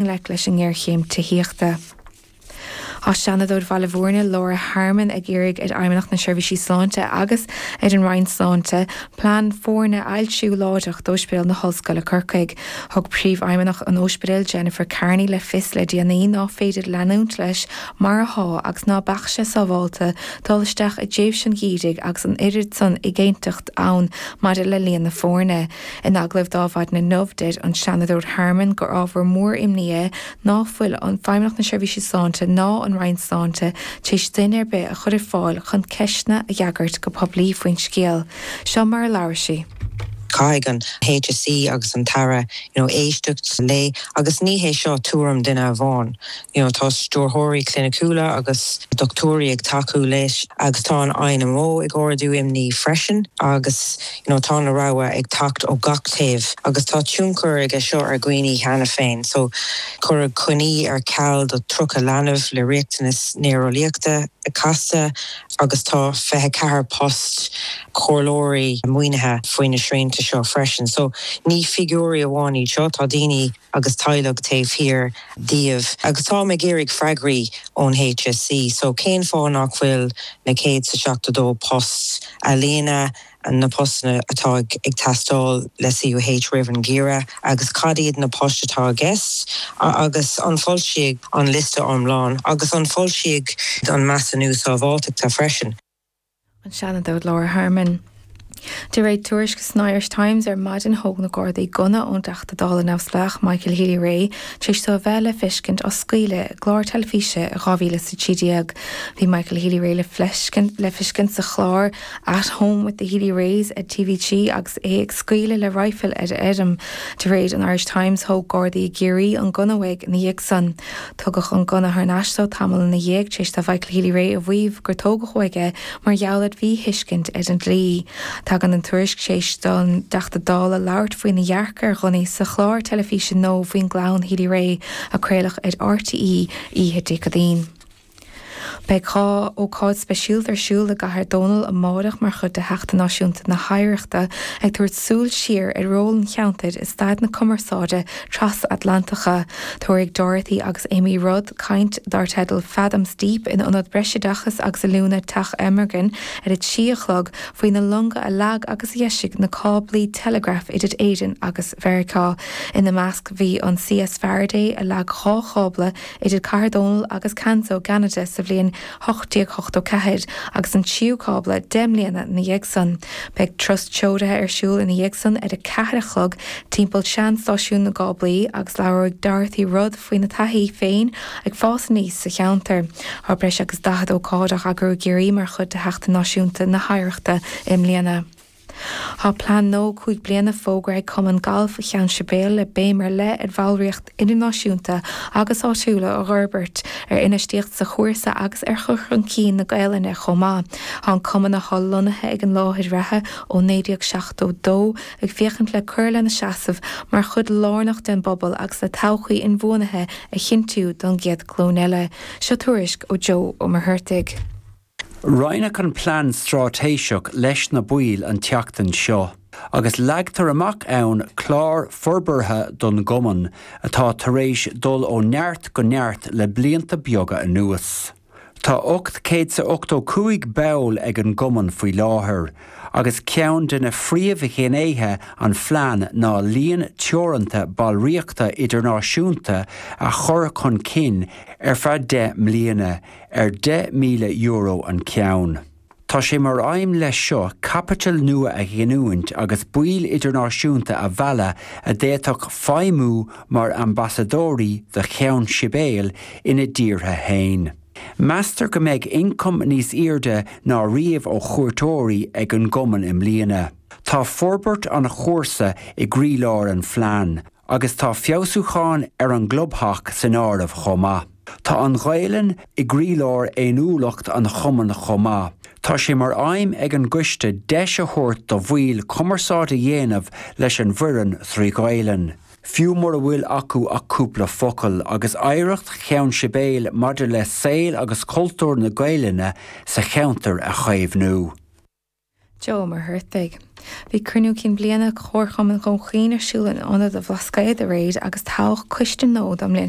ngleic leis an ngéarchéim tithíochta. Tá Seanadóir an Labhair, Laura Harmon, ag iarraidh ar Fheidhmeannacht na Seirbhíse Sláinte agus ar an Roinn Sláinte plean foirne a fhoilsiú láithreach d'Óispidéal na hOllscoile i gCorcaigh. Thug Príomhfheidhmeannach an Óispidéil, Jennifer Kearney, le fios le déanaí ná féidir leanúint leis mar athá agus ná beadh sé sábhálta dul isteach i dtréimhse an gheimhridh agus an oiread san éiginnteachta ann maidir le líon na foirne. In agallamh linn maidin inniu, deir an Seanadóir Harmon gur ábhar mór imní é ná fuil Feidhmeannacht na Seirbhíse Sláinte ná an Roinn Sláinte tar éis duine ar bith a chur ar fáil chun ceisteanna a fhreagairt go poiblí faoin scéal. Seo mar a labhair sí. Caithfidh an HSE agus an tAire you know éisteacht léi agus ní hé seo tuairim duine amháin. You know tá stiúrthóirí cliniciúla agus dochtúirí ag tacú léi agus tá an INMO ag ardú imní freisin agus you know tá na rabhaidh ag teacht ó gach taobh agus tá tionchar aige seo ar dhaoine cheana féin so cuireadh coinní ar ceal do 30 leanbh le riachtanas néareolaíochta casta agus tá 24 post comhairleoirí maoinithe faoi na srianta seo freisin so ní figiúirí amháin iad seo tá daoine agus teaghlaigh taobh thiar díobh agus táim ag iarraidh freagraí ón HSE. So cén fáth nach bhfuil na céad is a seachtó dó post á líonadh, na poist atá ag teastáil le CUH roimh an ngeimhreadh agus cad iad na poist atá i gceist agus an bhfoilseofar an liosta iomlán agus an bhfoilseofar an measúnú sábháilteachta freisin. an Seanadóir Laura Harmon. De réir tuairisce san Irish Times ar maidin thóg na Gardaí gunna ón dTeachta Dála neamhspleách Michael Healy-Rae tar éis do a bheith le feiscint ag scaoileadh i gclár teilifíse i 2013. Bhí Michael Healy-Rae le feiscint sa chlár At Home with the Healy-Raes ar TV3 agus é ag scaoileadh le raidhfil ar a fheirm. De réir an Irish Times thóg Gardaí i gCiarraí an gunna uaidh ina dhiaidh san. Tugadh an gunna thar n-ais dó tamall ina dhiaidh téis do Mhichael Healy-Rae a mhaíomh gur tógadh uaidh é mar gheall ar mhí-thuiscint ar an dlí. Tagann an tuairisc téis don dTeachta Dála labhairt faoi na dhearcadh ar ghunnaí sa chlár teilifíse nua faoin gclann Healy-Rae a craoladh ar RTÉ oíche Dé Céadaoin. Beidh dhá ócáid speisialta ar siúl i gCathair Dónall amáireach mar chuid de Sheachtain Náisiúnta na hOidhreachta, ag tabhairt súil siar ar ról an cheantair i stair na cumarsáide tras-Atlantacha. Tabharfaidh Dorothy agus Amy Rudd caint dar teideal 'Fathoms Deep' in Ionad Breisoideachais agus Oiliúna Teach Amergin ar a trí a chlog faoi na longa a leag agus a dheisigh na cáblaí teileagraif idir Éirinn agus Meiriceá. Ina measc bhí an CS Faraday a leag dhá chábla idir Cathair Dónaill agus Canso i gCeanada sa bhliain 1884 agus an tríú cábla deich mbliana 'na dhiaidh san. Beidh turas treoraithe ar siúl ina dhiaidh san ar a ceathair a chlog timpeall sean-stáisiún na gcáblaí agus labhróidh Dorothy Rudd faoina taithí féin ag fás aníos sa cheantar. Tá breis agus daichead ócáid á n-eagrú i gCiarraí mar chuid de Sheachtain Náisiúnta na hOidhreachta i mbliana. Tá Plean Nua 5 Bliana fógartha ag Cumann Gailf Cheann Sibéal le béim ar leith ar bhallraíocht idirnáisiúnta agus áitiúil a fhorbairt, ar infheistíocht sa chúrsa agus ar chur chun cinn na Gaelainne chomh maith. Tá an Cumann, atá lonnaithe ag an láthair reatha ó 1972, ag féachaint le cur lena seasamh mar chuid lárnach den bpobal agus le todhchaí inbhuanaithe a chinntiú don gcéad glúin eile. Seo tuairisc ó Joe Ó Muircheartaigh. Roinneadh an Plean Straitéiseach leis na baill an tseachtain seo agus leagtar amach ann clár forbartha don gCumann atá tar éis dul ó neart go neart le blianta beaga anuas. Tá ocht céad 's a ochtó cúig ball ag an gCumann faoi láthair agus ceann de na phríomhghnéithe an phlean ná líon teoranta ballraíochta idirnáisiúnta a chur chun cinn ar feadh deich mbliana ar €10,000 an ceann. Tá sé mar aidhm leis seo caipiteal nua a ghiniúint agus baill idirnáisiúnta a mhealladh a d'fhéadfadh feidhmiú mar ambasadóirí do Cheann Sibéal ina dtíortha fhéin. Meastar go mbeidh ioncam níos airde ná riamh ó chuairteoirí ag an gCumann i mbliana. Tá forbairt an chúrsa i gcroílár an phlean, Agus tá feabhsúcháin ar an gclubtheach san áireamh chomh maith. Tá an Ghaelainn i gcroílár fhéiniúlacht an Chumainn chomh maith. Tá sé mar aidhm ag an gCoiste deis a thabhairt do bhaill cumarsáid a dhéanamh leis an bhfoireann trí Ghaelainn, fiú mura bhfuil acu ach cúpla focal, agus oidhreacht Cheann Sibéal maidir le saol agus cultúr na Gaelainne sa cheantar a chaomhnú. Joe Ó Muircheartaigh. Bhí Cruinniú Cinn Bliana Chomharchumann Dhún Chaoin ar siúl in Ionad an Bhlascaoid aréir agus toghadh Coiste Gnó don mbliain.